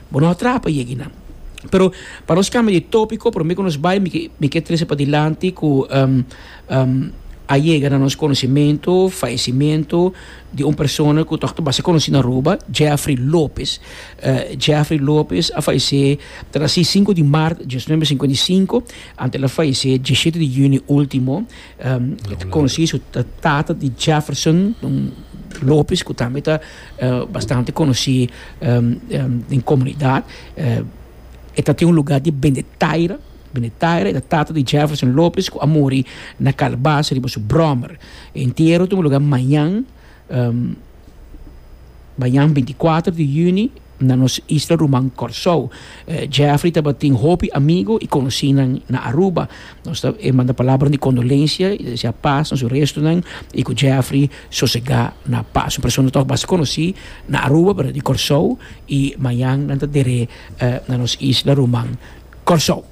Bo no a traha pa yegi nan. Pero pa nos cambia di topico, prome cu nos bay mi kier trece padilanti cu a yega na nos conocimento fallecimento di un persona cu tok ta basta conoci na Aruba, Jeffrey Lopez. Jeffrey Lopez a fallece ta na si cinco di maart diecinuebe cincuenta y cinco, anto el a fallece diecisiete di junio ultimo. E ta conoci su tata di Jefferson Lopez cu tambe ta bastante conoci den comunidad e ta tin un lugar di bende taira bende taira e ta tata di Jefferson Lopez cu a muri na Calabasa riba su brommer e entiero ta un lugar mañan mañan binti cuater di juni na nos isla ruman Kòrsou. Jeffrey tabatin hopi amigu i konosinan na Aruba. Nos ta e manda palabra di kondolensia i ta desea pas na su restunan i ku Jeffrey sosegá na pas. Un persona tòg basta konosí na Aruba, pero di Kòrsou i mañan nan ta der'é na nos isla ruman Kòrsou.